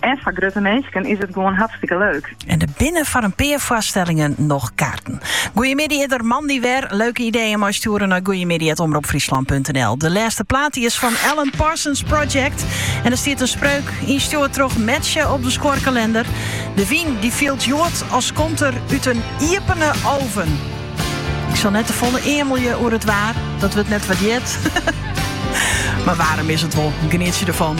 En foar grutte minsken is it gewoan hartstikke leuk. En der binne foar in pear foarstellingen noch kaarten. Goeie middei is der moandei wer. Leuke ideeën mei stjoeren nei goeiemiddei@omropfryslan.nl. De lêste plaat die is fan Alan Parsons Project. En der stiet in spreuk ynstjoerd troch Metsje op de skuorkalinder. De wyn die fielt hjoed as komt er út in iepen oven. Ik sil net te folle eamelje oer it waar, dat wurdt net wurdearre, mar waarm is it wol. Genietsje derfan.